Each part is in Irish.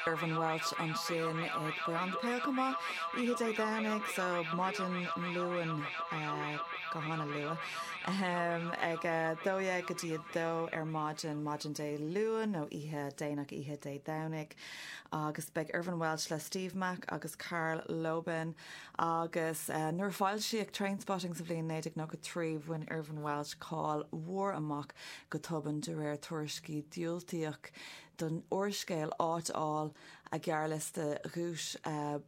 Irvine Welsh ansin ag breathnú pé acu maith oíche Dé Domhnaigh, so maidin Luain go han-luath, ahem, ag a dó dhéag go dtí a dó ar maidin, maidin Dé Luain nó oíche déanach oíche Dé Domhnaigh. Agus beidh Irvine Welsh le Steve Mac agus Karl Lobban. agus nuair a foilsíodh Trainspotting sa bhliain 1993, bhain Irvine Welsh cáil mhór amach go tobann de réir tuairiscí diúltaíodh don úrscéal áit a fháil ar ghearrliosta dhuais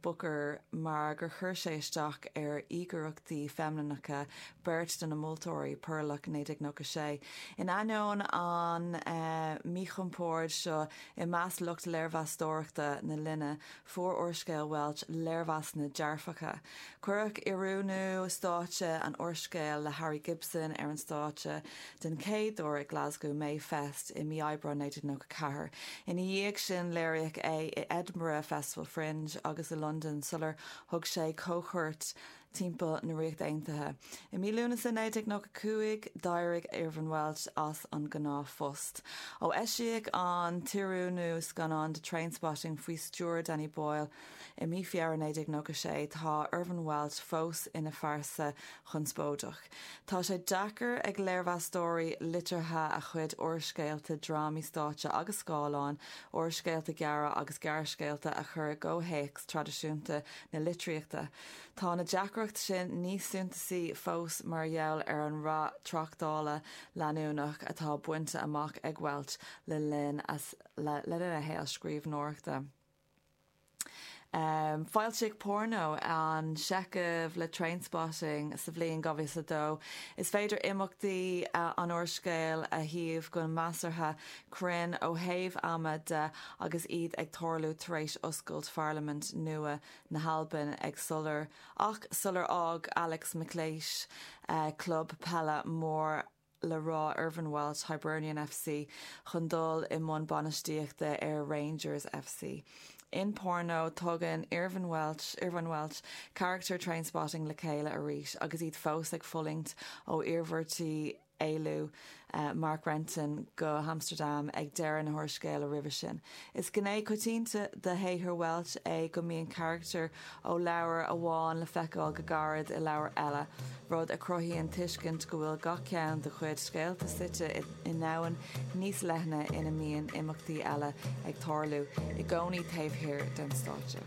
Booker mar gur chuir sé isteach ar íogaireachtaí feimineacha beirt de na moltóirí, Perlock, 1996. In ainneoin an míchompord seo i measc lucht léirmheastóireachta na linne, Fuair úrscéal Welsh léirmheasanna dearfacha. Cuireadh oiriúnú stáitse an úrscéil le Harry Gibson ar an stáitse den chéad uair ag Glasgow Mayfest i mí Aibreáin 1994. Ina dhiaidh sin léiríodh é i Edinburgh Festival Fringe agus i Londain sular thug sé camchuairt timpeall na Ríochta Aontaithe. I mí Lúnasa 1995, d'éirigh Irvine Welsh as a ghnáthphost. Ó eisíodh an t-oiriúnú scannán de Trainspotting faoi stiúir Danny Boyle i mí Feabhra 1996, tá Irvine Welsh fós ina phearsa chonspóideach. Tá sé deacair ag léirmheastóirí liteartha a chuid úrscéalta, drámaí stáitse agus scáileáin, úrscéalta gearra agus gearrscéalta a chur i gcomhthéacs traidisiúnta na litríochta. Tá an deacracht sin níos suntasaí fós mar gheall ar an rath tráchtála leanúnach atá bainte amach ag Welsh le linn a shaol scríbhneoireachta. Foilsíodh Porno, an seicheamh le Trainspotting sa bhliain 2002. Is féidir imeachtaí an úrscéil a shuíomh go measartha cruinn ó thaobh ama de agus iad ag tarlú tar éis oscailt pharlaimint nua na hAlban ag Solar ach sular fhág Alex McLeish club peile mór le rá Irvine Welsh, Hibernian FC, chun dul i mbun bainistíochta ar Rangers FC. In Porno, tugann Irvine Welsh, Irvine Welsh, carachtair Trainspotting le chéile arís agus iad fós ag fulaingt ó iarmhairtí éalú Mark Renton go hAmstardam ag deireadh an úrscéil roimhe sin. Is gné coitianta de shaothar Welsh é go mbíonn carachtair ó leabhar amháin le feiceáil go gairid i leabhar eile, rud a chruthaíonn tuiscint go bhfuil gach ceann dá chuid scéalta suite i ndomhan níos leithne ina mbíonn imeachtaí eile ag tarlú i gcónaí taobh thiar den stáitse.